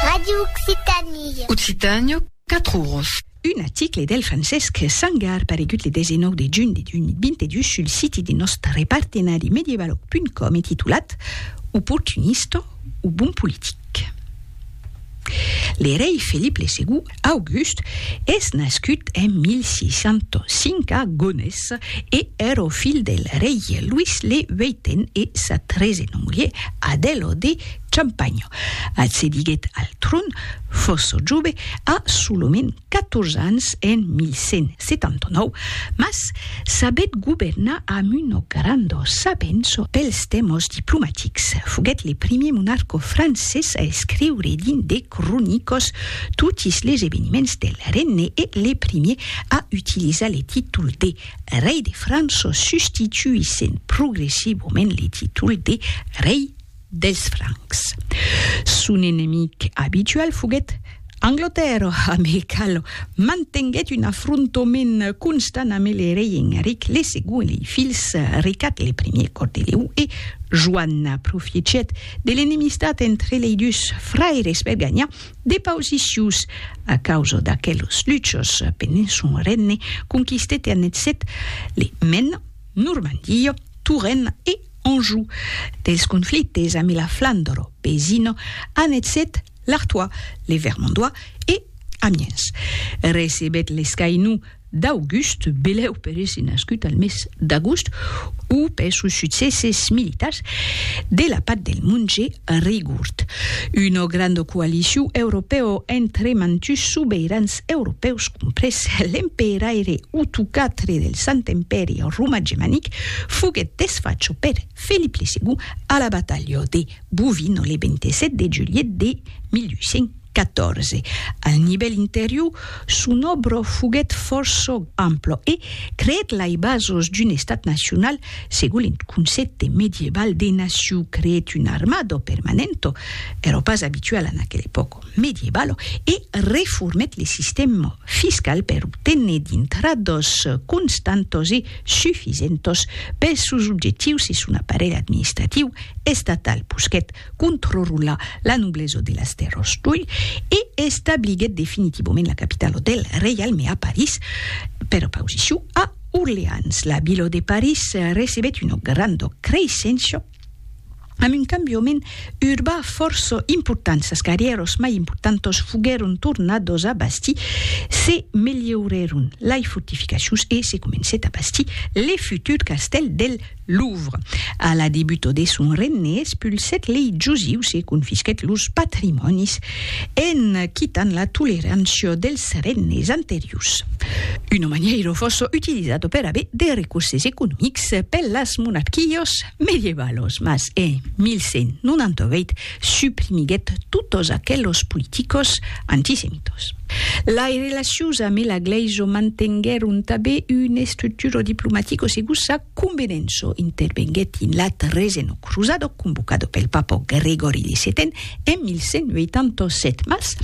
Radio Occitanie. Occitània, 4 oros. Un article del Francesc Sangar paregut le 19 de junh de 2022 sul siti de nòstre partenari medievaloc.com e titulat Oportunista o bon politic? Le rei Felip le Segon August es nascut en 1605 a Gonés e er o filh del rei Luís le Vèiten e sa tresena mulher Adèlo de Champagne. Accediguèt al tron, fòrça jove, a solament 14 ans en 1179, mas sabèt governar amb una granda sabença pels tèmas diplomatics. Foguèt le primièr monarca francés a escriure dins de cronicos totis les eveniments del regne e le primier a utilizar le títol de rei de França substituissent progressivament le títol de rei dels Francs. Son enemic abitual foguèt Anglatèrra amb el qual mantenguèt un afrontament constant amb le rei Enric le Segond e lei filhs Ricat le Primier Còrdelèu e Joan. Profiechèt de l'enemistat entre lei dus fraires per ganhar de pausicius a causa d'aquelos luchos pendent son regne conquistèt e annexèt le Maine, Normandia, Touraine e Anjou. Dels conflictes ambe la Flandre vesina annexèt l'Artois, le Vermandois e Amiens. Recebèt l'escainou d'august, belèu per èsser nascut al mes d'agost, o per sos succèsses militars de la Path del Monge Rigourd, una granda coalicion europèo entre mantus sobeirans europèus comprés l'emperaire Utu iv del Sant Empèri Romà Gemanic, foguèt desfacha per Felip le Segond a la batalha de Bouvines le 27 de julhet de 1800. 14. Al nivèl interior, son òbra foguèt fòrça ampla e creèt lai basos d'un estat nacional segon eth concèpte medieval de nacion, creèt una armada permanenta, èra pas abituala en aquela epòca medievala, e reformèt le sistèma fiscal per obténer d'intradas constantas e sufisentas pels sòus objectius e son aparelh administratiu estatal, posquèt contrrola la nobleso de las tèrros d'Oulh e establiguèt definitivament la capitalo del reialme a París, per opausicion a Orleans. La vila de París recebèt una granda creisséncia amb un cambiament urbà fòrça important. Sas carrièros mai importantos foguèron tornados a bastir, se melhorèron lai fortificacions e se comencèt a bastir le futur castèl del Louvre. A la debuto de son regne espulsèt lei josius e confisquèt los patrimònis, en quitant la tolerançio dels regnes anterius. Una manièiro fosso utilizato per aver de recurses economics per las monarquios medievalos, mas en 1198 suprimiguèt totos aquelos politicos antisemitos. Lai relacions amé la Glaiso mantenguèron tabé un estructuro diplomatico segus sa convenenço, intervenguèt in la Treseno Crusado convocado pel Papa Gregori de Setèn en 1187, mas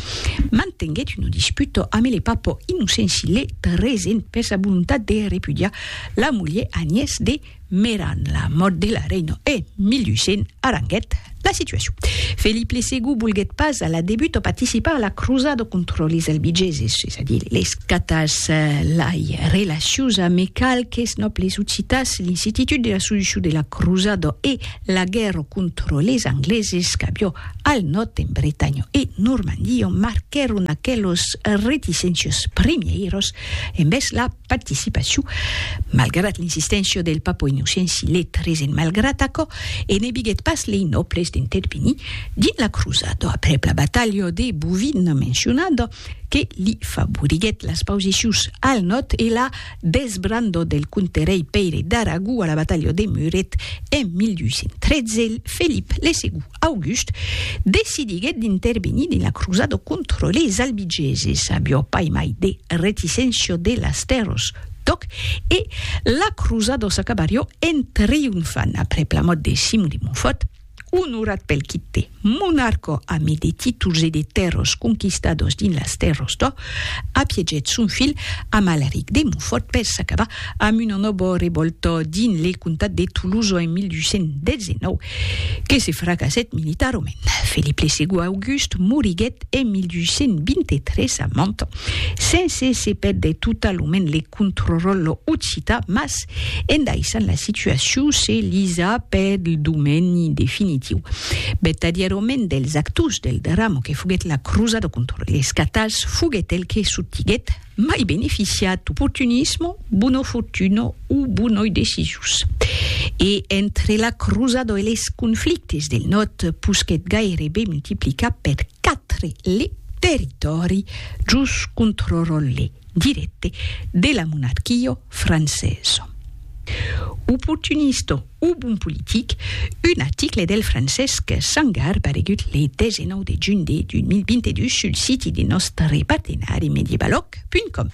mantenguèt uno disputo amé le Papa Innocenci le Tresèn per sa volontat de repudiar la mulher Agnès de Meran la mòrt de la reina e 1800 aranguèt la situacion. Felip le Segond volguèt pas a la debut o participar a la crosada contra les Albigeses, es a dire les Catars. Lai relacions amé qualques nòbles occitans, l'incititud de la solucion de la crosada e la guèrra contra les Angleses qu'avió al nòrd en Bretanha e Normandia marquèron aquelos reticéncios primièiros envèrs la participaciu, malgrat l'insisténcia del Papa Innocenci le tresen malgrat aquò e ne biguèt pas lei nòbles d'intervenir dins la crusada aprèp la batalha de Bouvines mencionada que li favoriguèt las pausicius al nòrd e la desbranda del conterèi Pèire d'Aragó a la batalha de Muret en 1213 Felip le Segon August decidiguèt d'intervenir dins la crusada contra leis Albigeses, avió pas mai de reticéncia de las tèrras d'òc e la crusada s'acabarió en triunfant aprèp la mòrt de Simon de Montfòrt, onorat pel quite monarca ame de títols e de tèrras conquistadas dins las tèrras d'òc. Apiegèt son filh amb Alaric de Montfòrt per s'acabar amb una nòva revòlta dins le comtat de Tolosa en 1219, que se fracassèt militarament. Felip le Segond August moriguèt en 1223 a Mantes, sense se pèrdre totalament le contròrlo occita, mas en daissant la situacion se lisa per lo domeni definitiu. Vertadièrament dels actors del drama que foguèt la crosada contra les catals foguèt el que sotiguèt mai beneficiat d'oportunismo, bona fortuna o bonoi decisions. E entre la crosada e les conflictes del nòrd posquèt gairebe multiplicar per quatre le territòri just contròrle. dirècte de la monarquia francesa. Oportunista o bon politic, un article del Francesc Sangar paregut le 19 de junh de 2022 sul siti de nòstre partenari Mediebaloc.com.